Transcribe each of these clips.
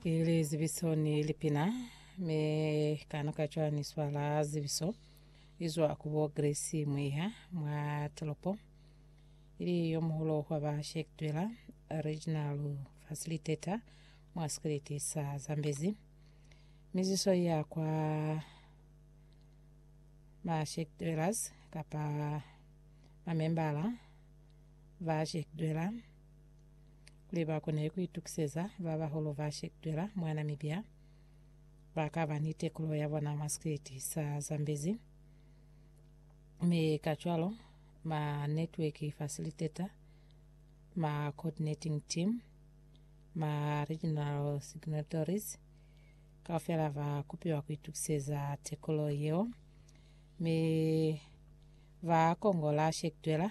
ili zibiso ni lipina mi kano ka cwa ni swala zibiso izwa kubo grace mwiha mwa tolopo ili yo muhulo wa ba shektwela regional facilitator mwa sikiliti sa zambezi miziso ya kwa ma shektwelas kapa mamembala ba shektwela kuli ba kone ku itukiseza ba bahulu ba shekutwela mwa Namibia ba ka ba ni tekulo ya bona mwa sikwiti sa Zambezi, mi kacwalo ma Network Facilitator, ma Coordinating Team, ma Regional Signatories kaufela ba kupiwa ku itukiseza tekulo yeo, mi ba kongola shekutwela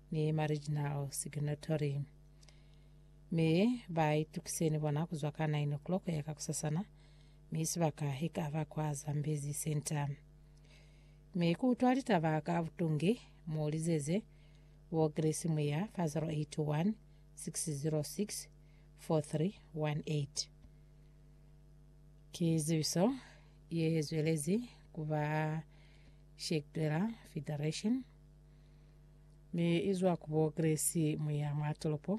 ni ma-regional signatory, mi ba itukise ni bona kuzwa ka 9:00 kuya ka kusasana, mi sibaka ikaba kwa Zambezi Centre. Mi ku utwa litaba ka butungi, mu lizeze bo Grace Muya fa 081 606 4318. Ki zibiso ye zwelezi kuba Shekdwela Federation. Mi izwa ku bo Grace, mwi ya mwa tolopo